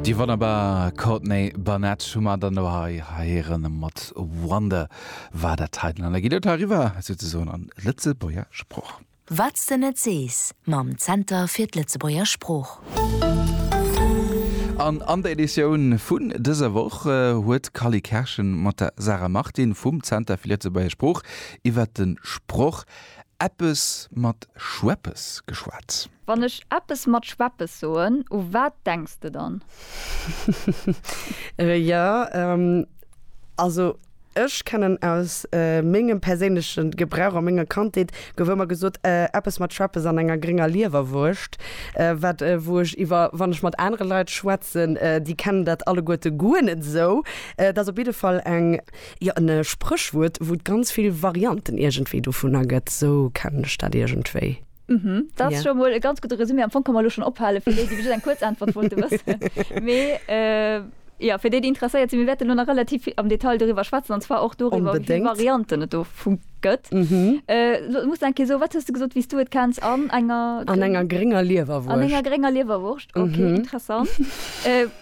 Déi wonnerbar Courtney Barnett hu mer dann elo hei héieren mat Wonder war dat hei den. An da geet et hei eriwwer souzesoen an Lëtzebuerger Sprooch. Wat s de net sees mam Zenter fir d'Lëtzebuerger Sprooch. An an der Editioun vun dëser Woch huet d'Cally Kerschen mat der Sarah Martin vum Zenter fir Lëtzebuerger Sprooch iwwert de Sproch Eppes mat Schweppes geschwat. Wann ech eppes mat Schweppes soen, u wat denks de dann? Reja, Also ech kennen aus mengem perséinleche Gebrauch a menger Kandheet gouf ëmmer gesot, eppes mat Schweppes an enger grénger Liewerwurscht, wat wou ech iwwer wann ech mat anere Leit schwätzen, déi kennen dat alleguerte guer net esou. Dat ass op jidde Fall eng. Jo, en Spréchwuert, wou et ganz vill Varianten iergendwéi dovunner gëtt, esou kennen ech dat iergendwéi. Mhm, dat ass scho mol e ganz gudde Resumé. Am Fong ka mer elo schonn ophale fir déi, déi just eng kuerz Äntwert wollte wëssen. Mee jo, fir déi, déi interesséiert sinn, mir wäerten elo nach relativ vill am Detail doriwwer schwätzen, an zwar och doriwwer, wéi vill Varianten et dovu gëtt. Elo muss ech eng Kéier soen, Wat hues de gesot, wéi s du et kenns? An enger. An enger grénger Liewerwurscht. An enger grénger Liewerwurscht, okay, interessant.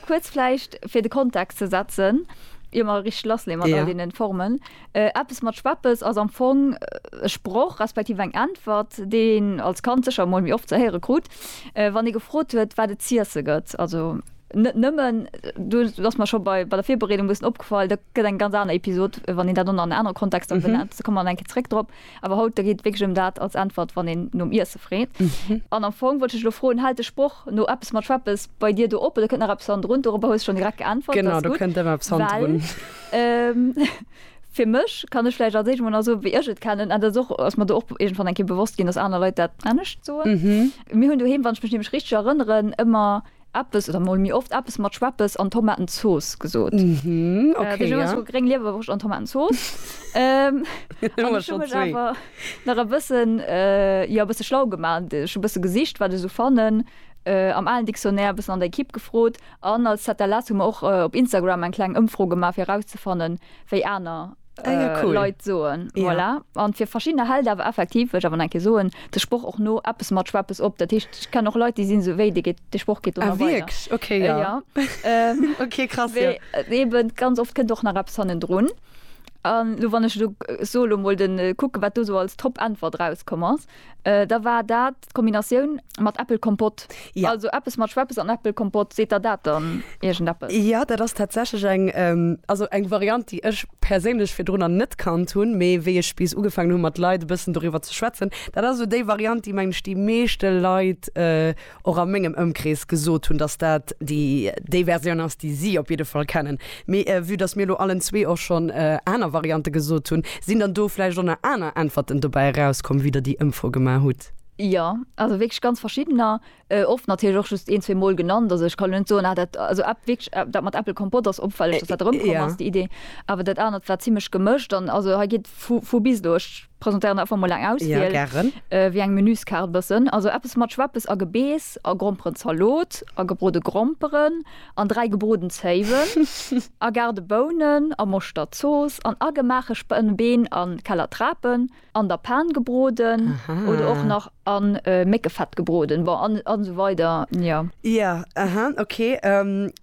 Kuerz vläicht fir de Kontext ze setzen, ier mer richteg lass leeë mat all deenen Formen, Eppes mat Schweppes ass am Fong e Sproch respektiv eng Äntwert, déi een als Kand sécher emol méi oft ze héiere krut, wann ee gefrot huet, wat et z'iesse gëtt. Also net nëmmen, do ass mer scho bei der Virbereedung e bëssen opgefall, dat gëtt eng ganz aner Episod, wann een dat an en anere Kontext erëm benennt, do komme mer nach eng Kéier zréck drop. Awer haut, da geet et wierklech ëm dat als Äntwert, wann een nom Iesse freet. An am Fong wollt ech dech elo froen, Hält de Sproch no eppes mat Schweppes bei dir do op oder kënnt nach eppes hannendrun? Dorobber hues de schonn direkt geäntwert. Dat ass gutt. Genau, do kënnt ëmmer eppes hannendrun. Well fir mech, kann ech vläicht als éischt emol nach soen, wéi ech et kennen, an dat ass och, ass mer do och iergendwann eng Kéier bewosst ginn, dass aner Leit dat anescht soen. Mir hunn doheem, wann ech mech nämlech richteg erënneren, ëmmer. Eppes, oder mol méi oft eppes mat Schweppes an Tomatenzooss gesot. Deen Numm ass vu Gréng Liewerwurscht an Tomatenzooss. An ech hu mech awer nach e bëssen, jo, e bësse schlau gemaach. Ech hu e bësse gesicht, wat ech esou fannen am alen Dictionnaire, e bëssen an der Ekipp gefrot. An als ZLS hu mer och op Instagram eng kleng Ëmfro gemaach, fir erauszefannen, wéi aner. Leit soen. Voilà. An fir verschiddener hält awer effektiv, wëll ech awer nach eng Kéier soen, de Sproch och no eppes mat Schweppes op. Dat heescht, ech kennen och Leit, déi sinn esou wéi, dee geet, dee Sproch geet do nach weider. Ah wierklech? Okay, ja. Ja. Okay, krass, ja. Wéi eben ganz oft kënnt och nach eppes hannendrun. An elo, wann ech elo sou elo mol den kucken, wat do sou als Top-Äntwert erauskomm ass, da war dat, D'Kombinatioun mat Äppelkompott, also eppes mat Schweppes an Äppelkompott, seet der dat dann iergendeppes? Jo, dat ass tatsächlech eng, also eng Variant, déi ech perséinlech virdrunner net kannt hunn, mee wéi ech bis ugefaangen hunn, mat Leit e bëssen doriwwer ze schwätzen, dat ass esou déi Variant, déi, mengen ech, déi meeschte Leit och a mengem Ëmkrees gesot hunn, dass dat déi Versioun ass, déi si op jidde Fall kennen. Mee vue dass mir elo allen zwee och schonn aner Variante gesot hunn, sinn dann do vläicht och nach aner Äntwerten dobäi erauskomm, wéi Der déi Ëmfro gemaach hutt? Jo, also wierklech ganz verschiddener. Oft natierlech och just een, zwee Mol genannt. Also ech kann elo net soen, ah dat, also App, wierklech dat mat Apple Kompott ass opfälleg, dass dat erëmkomm ass, déi Idee. Awer dat anert war zimlech gemëscht. An also hei geet vu bis do. Ech Presentéieren einfach mol eng Auswiel. Ja, gären. Wéi eng Menüskaart bëssen. Also eppes mat Schweppes a Gebeess a Gromperen, Zalot a gebrode Gromperen an 3 gebroden Zéiwen a garde Bounen a Moschtert, Zooss an agemaache Spënnbeen a Keller Trapen an der Pan gebroden oder och nach a Méckefett gebroden. Bon, an esou weider, jo. Ja, aha, ok.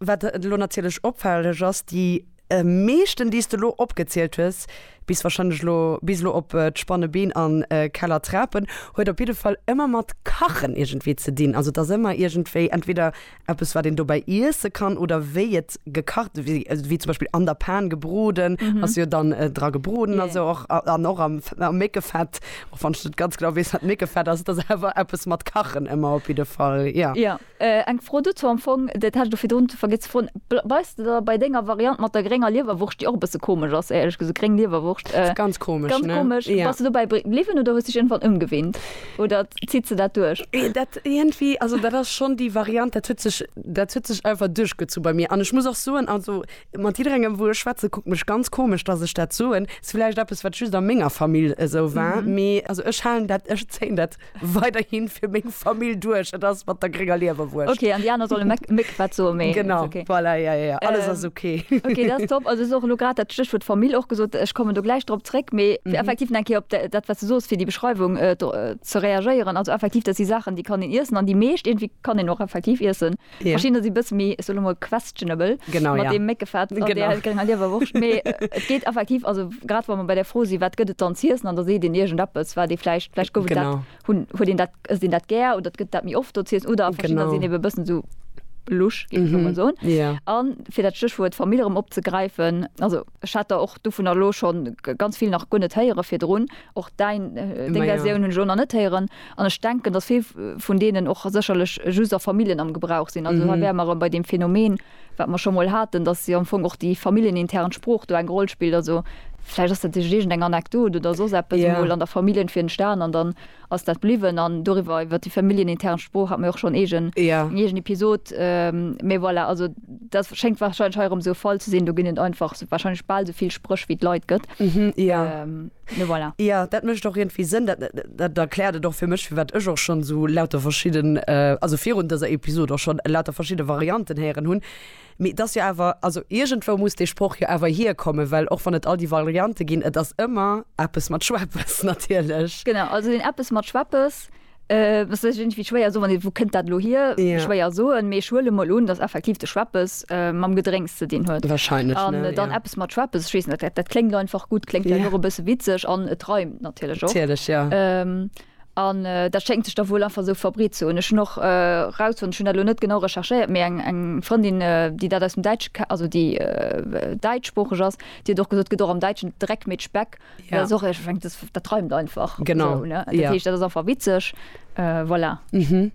Wat elo natierlech opfälleg ass, déi. meeschten déi s de lo opgezielt hues, bis wahrscheinlech lo bis lo op d'spanne Been an Keller Trapen, huet op jidde Fall ëmmer mat kachen iergendwéi ze dinn. Also et ass ëmmer iergendwéi entweder eppes wat een dobäi iesse kann oder wéi et gekacht wéi wéi zum Beispill an der Pan gebroden ass jo dann dra gebroden a sou och an och am am Méckefett, och wann ech net ganz genau weess wat Méckefett ass, et ass awer eppes mat kachen ëmmer op jidde Fall, jo. Eng Fro dozou, am Fong, dat hat ech do virdrun vergiess ze froen, bleiws de da bei denger Variant mat der grénger Liewerwurscht, déi och e bësse komesch ass, éierlech gesot, gréng Liewerwurscht, Ganz komesch, ganz ne? komesch, Ja. bass de dobäi bliwwen oder hues dech iergendwann ëmgewinnt oder zitt se dat duerch? Dat iergendwéi, also dat ass schonn déi Variant, dat huet sech, dat huet sech einfach duerchgezu bei mir. An ech muss och soen, also mat jidderengem, wou ech schwätze, kuckt mech ganz komesch, dass ech dat soen. Ass villäicht eppes, wat just a menger Famill esou war, mee also ech halen dat, ech zéien dat weiderhin fir meng Famill duerch. Et ass mat der grénger Liewerwurscht. Okay, an déi aner solle Méck, Méck, wat soe mir? Genau, okay. voilà, ja, ja, ja. Alles ass okay. Ähm, okay, dat ass top. Also, du hues och elo grad dat Stéchwuert Famill och gesot. Ech kommen do gläich drop zréck. Mee fir effektiv nach eng Kéier op dat, wat du soos, fir déi Beschreiwung ze reagéieren. Also effektiv, dat si Saachen, déi kann een iessen. An déi meescht iergendwéi kann een och effektiv iessen. Verschiddener si bësse méi, ech soe lo mol questionable, genau, mat ja. deem Méckefett an der grénger Liewerwurscht. Mee et geet effektiv, also grad wa mer bei der Fro sinn, wat gëtt et dann z'iessen an da seet een iergendeppes, wat ee vläicht, vläicht gouf et dat, Genau. hunn, huet een dat, ësst een dat gär oder et gëtt dat méi oft do z'iessen oder verschiddener Genau. sinn ebe e bëssen esou lusch, géif ech lo mol soen. Ja. An fir dat Stéchwuert Famill erëm opzegräifen, also ech hat der och dovunner elo schonn ganz vill nach guer net héiere virdrun, och däin, deng Ma ja. Versioun hunn ech elo nach net héieren. An ech denken, dass vill vun deenen och sécherlech just a Familljen am Gebrauch sinn. Also hei wäre mer erëm bei deem Phänomen, wat mer scho mol haten, dass jo am Fong och déi familljenintern Sprooch do eng Roll spillt. Also vläicht ass dat just iergendeng Anekdot oder soss eppes emol an der Famill entwéi entstan an dann ass dat bliwwen. An doriwwer, iwwer déi familljenintern Sprooch hat mer jo och schonn eegen, eng eegen Episod. Mee voilà, also dat schéngt wahrscheinlech hei erëm esou e Fall ze sinn. Do ginn et einfach wahrscheinlech bal esou vill Spréch, wéi et Leit gëtt. Mhm, ja. Ähm, ne voilà. Ja, dat mécht och iergendwéi Sënn. Dat, dat erkläert et och fir mech, firwat ech och schonn esou lauter verschidden, äh, also virun dëser Episod och schonn lauter verschidde Varianten héieren hunn. Mee et ass jo awer, also iergendwou muss dee Sproch jo awer hierkommen, well och wann et all déi Variante ginn, et ass ëmmer eppes mat Schweppes natierlech. Genau, also deen eppes mat Schweppes, Ass sech irgendwie schwéier soen, wann ee, wou kënnt dat elo hier? Ja. Schwéier soen, mee ech huele mol un, datt effektiv de Schweppes mam Gedrénks ze dinn huet. Wahrscheinlech, ne? An dann ja. eppes mat Schweppes, ech weess net, dat, dat kléngt einfach gutt, kléngt vläicht och e bësse witzeg an et reimt natierlech och. Natierlech, ja. An dat schéngt sech da wuel einfach esou verbreet ze hunn. Ech hunn och rausfonnt, ech hunn dat elo net genau recherchéiert, mee eng, eng Frëndin, déi dat aus dem Däitsche ke-, also déi däitschsproocheg ass, déi huet och gesot, et gëtt och am Däitschen Dreck mit Speck. Ja. Das och ech fängt das, das träumt einfach. Genau. So, ne? Ja. Das ist einfach witzig. Äh, voilà. Mhm.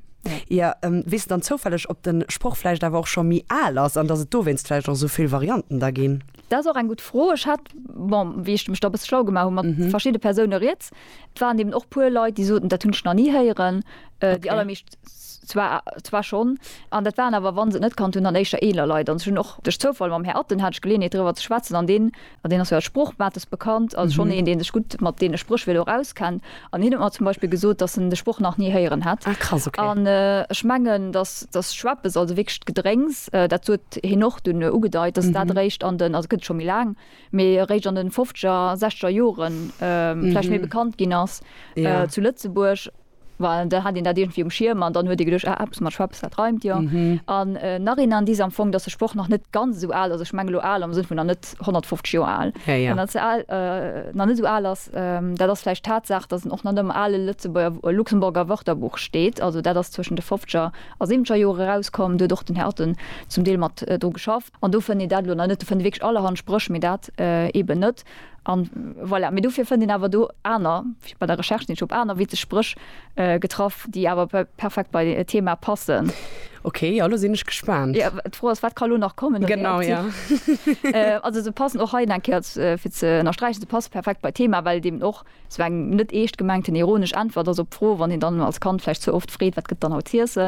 Ja, ähm, wisst dann zofälleg, ob den Spruch vielleicht aber auch schon mi al ass an dass et do wennst vielleicht auch so viel Varianten da gin. Das ist auch eng gut Fro. Ech hat bon, wie ich mech da bis schlau gemacht hun mat mhm. verschiedene Persone riets. Et waren eben och puer Leute, die soten dat hunn nach nie heieren. Äh, okay. Die allermecht zwar, zwar schon an dat waren aber wann se net kann hun an eischer eler Lei an schon och durch Zufall mam Herr Atten hat ich gelehnt darüber zu schwatzen an den An deen ass jo als Sprochmates bekannt, also schonn een, dee sech gutt mat deene Spréchwierder och auskennt. An hien huet mer zum Beispill gesot, datt en de Sproch nach ni héieren hätt. Ah krass, ok. An ech mengen, datt datt Schweppes, also wierklech d'Gedrénks, dat huet hien och dunn ugedeit, datt dat eréischt an den, also gëtt et scho méi laang, mee eréischt an de fofzeger, sechzeger Joren vläicht méi bekannt ginn ass zu Lëtzebuerg. Well da hat een dat iergendwéi um Schierm an dann huet ee geduecht, ah, eppes mat Schweppes, dat reimt jo. An Narinan disent am Fong, dass de Sproch nach net ganz esou al ass, ech mengen elo al am Sënn vun nach net 150 Joer al, nach net esou al ass, dat ass vläicht d'Tatsaach, dass en och nach net am ale Lëtzebuerger, Luxemburger Wörterbuch steet. Also dat ass zwëschen de fofzeger a siwwenzeger Jore erauskomm. Do huet och den Här Otten zum Deel mat dru geschafft. An do fënnt een dat elo nach net. Do fënnt ee wierklech allerhand Spréch, mee dat eeben net. An voilà. Mee dofir fënnt een awer do aner, bei der Recherche sinn ech op aner witzeg Spréch getraff, déi awer perfekt bei e Thema passen. Ok, jo, elo sinn ech gespaant. Jo, d'Fro ass, wat ka elo nach kommen? Genau, jo. Also se passen och hei nach eng Kéier, fir ze ënnersträichen, se passe perfekt bei d'Thema, well et eeben och esou eng net eescht gemengten ironesch Äntwert ass op d'Fro, wann een dann als Kand vläicht ze oft freet, Wat gëtt dann haut z'iessen?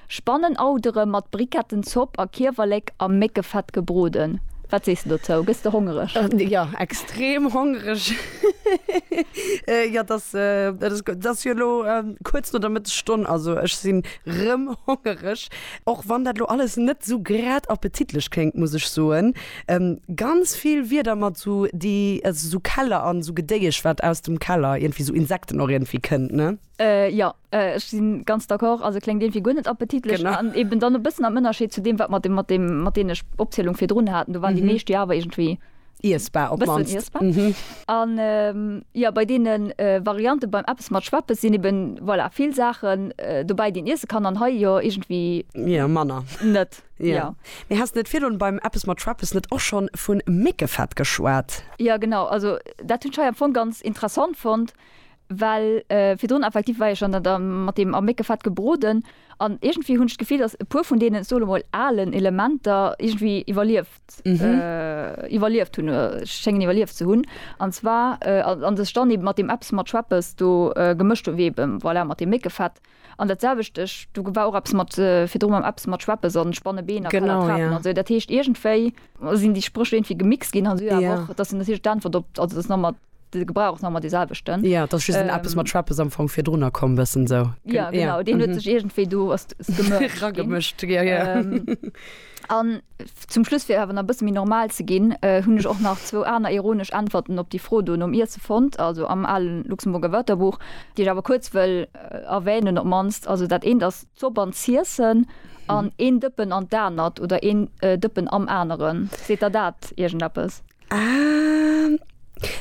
Spannenauderem mat Brikettenzopp a Kiewerlek am Méckefett gebroden. Wat sees de dozou? Gëss de hongereg? Jo, extrem hongereg. Jo, et ass, et ass gutt. Et ass jo elo kuerz no der Mëttesstonn, also ech sinn rëm hongereg. Och wann dat elo alles net esou grad appetitlech kléngt, muss ech soen. Ganz vill Wierder mat esou déi, also esou Keller an esou Gedéiesch wat aus dem Keller, iergendwéi esou Insekten och iergendwéi kënnt, ne? Jo, Ech si ganz d'accord. Also kléngt iergendwéi guer net appetitlech an eben dann e bëssen am Ënnerscheed zu deem, wat mer mat deem, mat deene Opzielung virdrun haten, do waren déi meescht jo awer iergendwéi e bëssen iessbar. A jo, bei deene Variante beim eppes mat Schweppes sinn eben, voilà, vill Saachen dobäi, déi een iesse kann an hei jo iergendwéi net. Jo. Mee häss net virdrun beim eppes mat Schweppes net och schonn vu Méckefett geschwat? Jo, genau. Also dat hunn ech hei am Fong ganz interessant fonnt. Well virdrun effektiv war ech an der mat deem a Méckefett gebroden an iergendwéi hunn ech d'Gefill, dass e puer vun deenen, ech soe lo mol alen Elementer iergendwéi iwwerlieft, iwwerlieft hunn, schéngen iwwerlieft ze hunn. An zwar, an dass ech dann eeben mat deem Eppes mat Schweppes do gemëscht hunn, wéi eebe voilà mat deem Méckefett. An dat selwecht, ech, do war och eppes mat virdru mam eppes mat Schweppesand, Spannebeen a Kalatrapen an sou. Dat heescht iergendwéi sinn déi Spréch iergendwéi gemixt ginn an sou. Awer och, dass se natierlech d'Äntwert op, also dass nach mat de Gebrauch ass nach mat dee selwechten. Jo, dass just en eppes mat Schweppes am Fong virdrunner komm, bëssen sou. Jo, genau, deen huet sech iergendwéi do, ass, gemëscht ginn. Ragemëscht, jo, jo. An zum Schluss, fir awer nach e bësse méi normal ze ginn, hunn ech och nach zwou aner ironesch Äntwerten op déi Fro do nom Iesse fonnt, also am ale Luxemburger Wörterbuch, déi ech awer kuerz wëll erwänen, op d'mannst. Also dat eent ass d'Zopp an d'Ziessen an een Dëppen an d'anert oder een Dëppen am aneren. Seet der dat iergendeppes? Ah,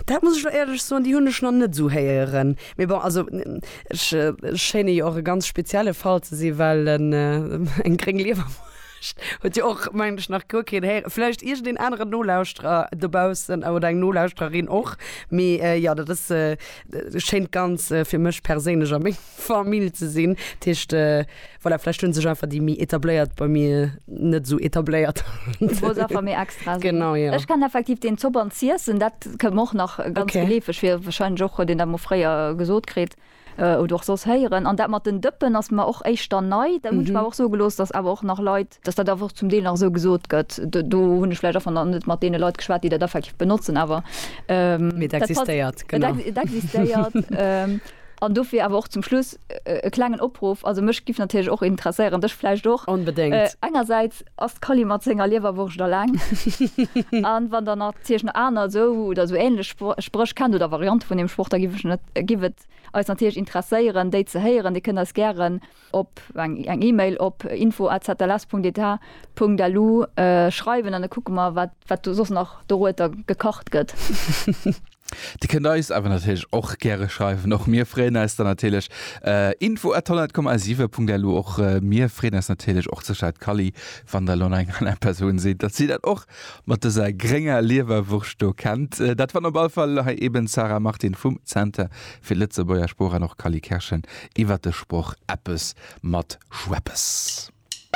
dat muss ech elo éierlech soen, déi hunn ech nach net esou héieren. Mee bon, also ech schéine jo och e ganz spezielle Fall ze sinn, well eng gréng Liewerwurscht huet jo och, mengen ech, nach guer keen héieren. Vläicht iergendeen aneren Nolauschterer dobaussen oder eng Nolauschtererin och. Mee jo, dat ass, schéint ganz, fir mech perséinlech a meng Famill ze sinn. Dat heescht, voilà, vläicht hunn sech einfach déi méi Etabléiert bei mir net esou etabléiert. Du wolls einfach méi extra sinn. Genau, jo. Ech kennen effektiv deen Zopp an z'iessen, dat kënnt mer och nach ganz geleefeg vir. Okay. Warscheinlech och, huet een dat mol fréier gesot kritt oder och soss héieren. An dat mat den Dëppen ass mer och éischter nei. Dat hunn ech mer awer och soe gelooss, dass awer och nach Leit dass dat awer och zum Deel nach esou gesot gëtt, do hunn ech vläicht einfach nach net mat deene Leit geschwat, déi dat effektiv benotzen, awer et existéiert, genau, et existéiert. An dofir awer och zum Schluss e klengen Opruff, also mech giff natierlech och interesséieren, dech vläicht och, engersäits ass d'Kali mat senger Liewerwurscht alleng a wann Der natierlech nach aner esou oder esou änlech Spréch kennt oder Variante vun deem Sproch, da giff et eis natierlech interesséieren, déi ze héieren. Dir kënnt eis gären op eng Email op info@zls.eta.lu schreiwen an da kucke mer wat do soss nach dorueter gekacht gëtt. Dir kënnt eis awer natierlech och gäre schreiwen, och mir freeën eis dann natierlech. info@tolland.com87.lu, och mir freeën eis natierlech och ze schreiwen. D'Cally van der Lonneng an eng Persoun seet, datt si dat och Mat dëser grénger Liewerwurscht do kennt dat wann op all Fall hei eben d'Sarah Martin vum Zenter fir Lëtzebuerger Sprooch an och Kally Kerschen iwwert de Sproch Eppes mat Schweppes.